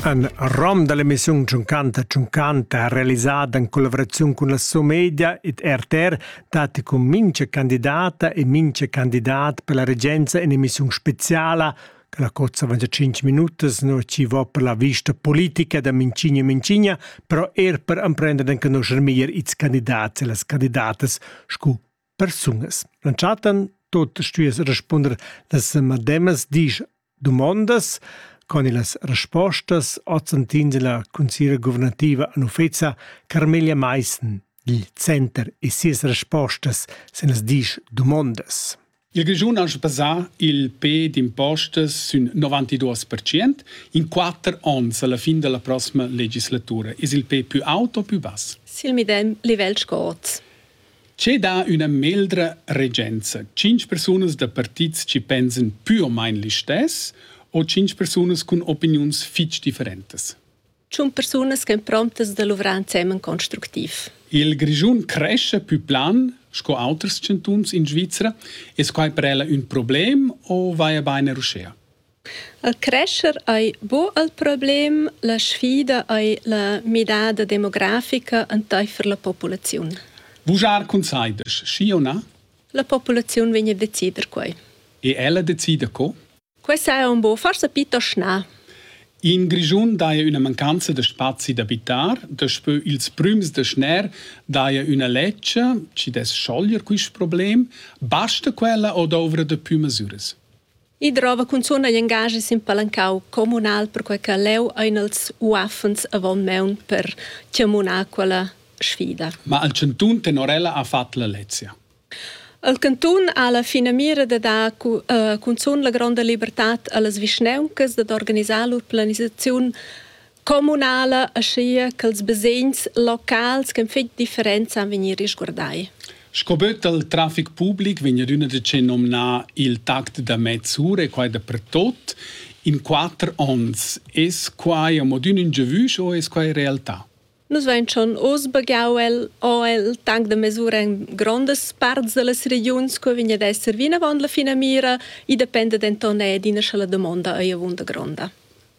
Ein rom dall'emissiun Tschunchanta Tschunchanta ha realisada in collaboraziun cun la Somedia ed RTR datti cun mincha candidata e mincha candidat per la regenza in'emissiun speciala che la cozza veggia 5 minutas no ci va per la vista politica da Mincigna e Mincigna, però er per emprender d'enconoscer meglier ils candidats e las candidatas scu persungas. L'entschatten tot stuies respunder las mademas dis domondas con las respostas ozzantins la consigliera guvernativa an uffeza Carmelia Meissen dil center e sias respostas sin las disch domondas. Il Grischun ha basà il pe d'impostas sün 92% in 4 ons alla fin della prossima legislatura. Is il pe più auto o più bass? Sil medem livel sco oz. Che dà üna meldra regenza? Tschinch persunas da partits chi pensan pü o main listess o tschinch persunas cun opiniuns fich differentas? Tschun persunas ch'en promptas da luvrar ensemen constructiv. Il Grischun crescha pü plan sco auters chantuns in Svizra. Es quai per ella ün problem o vaja bain er uschea? El crescher ei buc il problem, la sfida ei la midada demografica enteifer la populaziun. Vujar cun sai desch, schi o na? La populaziun vegn a decider quei. E ella decida co? Quei sa un bo forsa piuttost na. In Grischun daja üna mancanza da spazi d'abitar, daspö ils prüms da schner daja üna ledscha, chi dess schoglier quist problem. Basta quella o douvra da pü masüras? I drova cunzun ei engaschi sin palancau communal perquei che leu ein els uaffens avon maun per tschemunar quella sfida. Ma al cantun Tenorella ha fatg la lezia. El cantun ha la finamira de dar cunzun la gronda libertad allas vischnauncas dad organisar lur planisaziun Communala aschia ch'ils basegns locals ch'han fetg differenza han vegnir risguardai. Sco böt dal trafic public vegn adüna da ce nomnar il tact da mezz'ura e quai dapertut in quatter ons. Es quai amo adüna ün giavüsch o es quai realtà? Nus vain schon oz bagau el, o il tank da mesura in grondas parts dallas regiuns, co vegn ad esser vinavon la finamira, i dependa denton er d'ina sala damonda ei avunda gronda.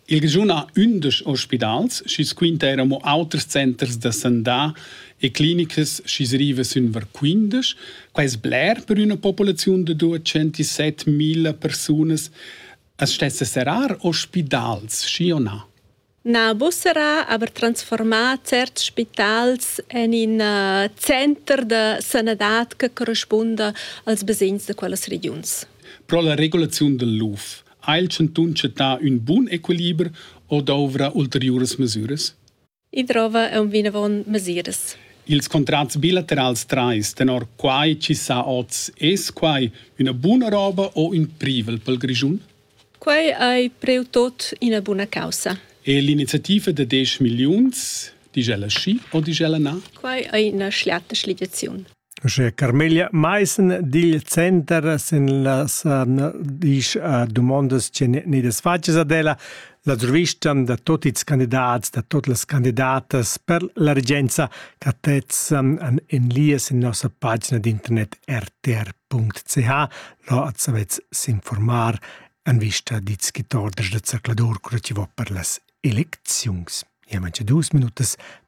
Il Grischun ha ündesch ospidals, schi's quinta eir amo auters centers da sandà e clinicas schi's riva sün var quindesch. Quai es bler per üna populaziun da 207.000 persunas. As stessa serrar ospidals, schi o na? Na, bu sarà aber transformar certs spitals en in uh, center da sanadad che correspunda als basegns da quellas regiuns. Pro la regulaziun del LUF Ha il chantun chattà ün bun equiliber o dovra ulteriuras mesüras? I drova aunc vinavon mesiras. Ils contrats bilaterals trais, tenor quai chi sa oz, es quai üna buna roba o ün privel pel Grischun? Quai ei preu tot ina buna caussa. E l'iniziativa da 10 milliuns, digl ella schi o digl ella na? Quai ei ina schliata schligiaziun. Uschè Carmela Maissen digl center sin las disch dumondas che gneidas fatgas ad ella la survistan da tuot ils candidats, da tuot las candidatas per la regenza ch'attessan an in lias in nossa pagina d'internet rtr.ch. Là at savez s'informar an vista dits schit orders da zercladur cura chi vo per las elecziuns. Ia mancha duos minutas